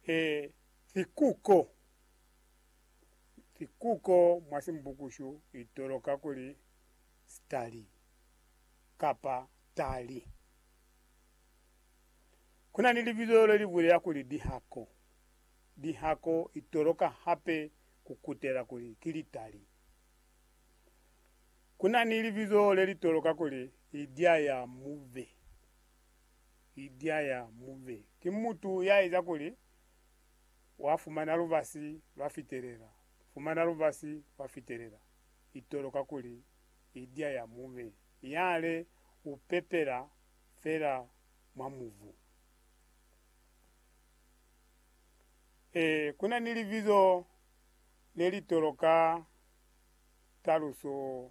He sikuko. Sikuko mwa Simbukushu i toloka kuli stali kapa tali. Ku na ni libizo le li bulela kuli dihako. Dihako i toloka hape ku kutela kuli ki litali. Ku na ni libizo le li toloka kuli idya ya mube. Idea ya Mube ki mutu ya eza kuli wa fumana lubasi lwa fitelela, fumana lubasi lwa fitelela. Itolo kakuli idea ya Mube yale u pepela fela mwa mubu. Ee, kuna ni libizo le litolo ka taluso.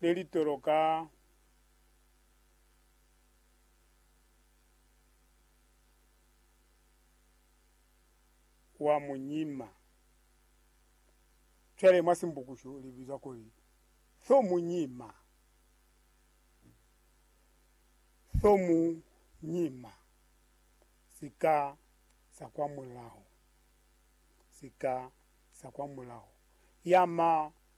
le li toloka wa munyima. Cwale mwa Simbukushu li bizwa kuli tho munyima. Tho munyima. Sika sa kwa mulaho. Sika sa kwa mulaho. Yama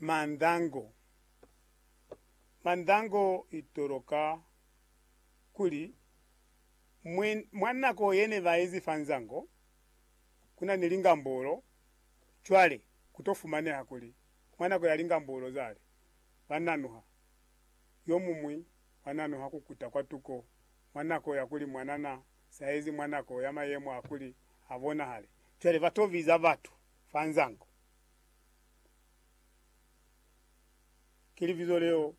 Mandango. Mandango i toloka kuli mwi, mwa nako ye ne ba ezi fa nzango, ku na ni lingambolo. Cwale, ku to fumaneha kuli mwa nako ya lingambolo zale, ba nanuha, yo mumwi wa nanuha ku kuta kwa tuko mwa nako ya kuli mwanana sa ezi mwa nako ya mayemo a kuli a bonahale. Cwale ba to biza batu fa nzango. Ki libizo leo,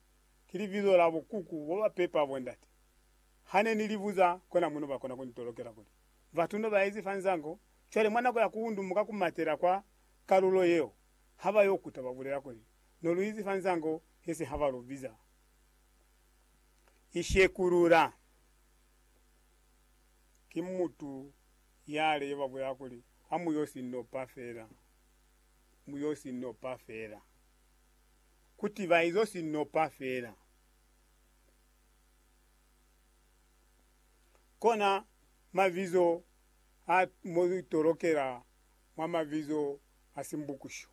ki libizo la bukuku bo ba pepa bo ndate. Ha ne ni li buza, kona mo no ba kona ku ni tolokela kuli, Batu no ba ezi fa nzango, cwale mwa nako ya ku undumuka ku matela kwa kalulo yeo, ha ba yo kuta ba bulela kuli, No lu izi fa nzango, he se ha ba lu biza. Ishekulula. Ki mutu yale yo ba bulela kuli, Ha mu yo si nopa fela. mu yo si nopa fela. Ku tiba izo si nopa fela. Kona mabizo a mo tolokela mwa mabizo a Simbukusho.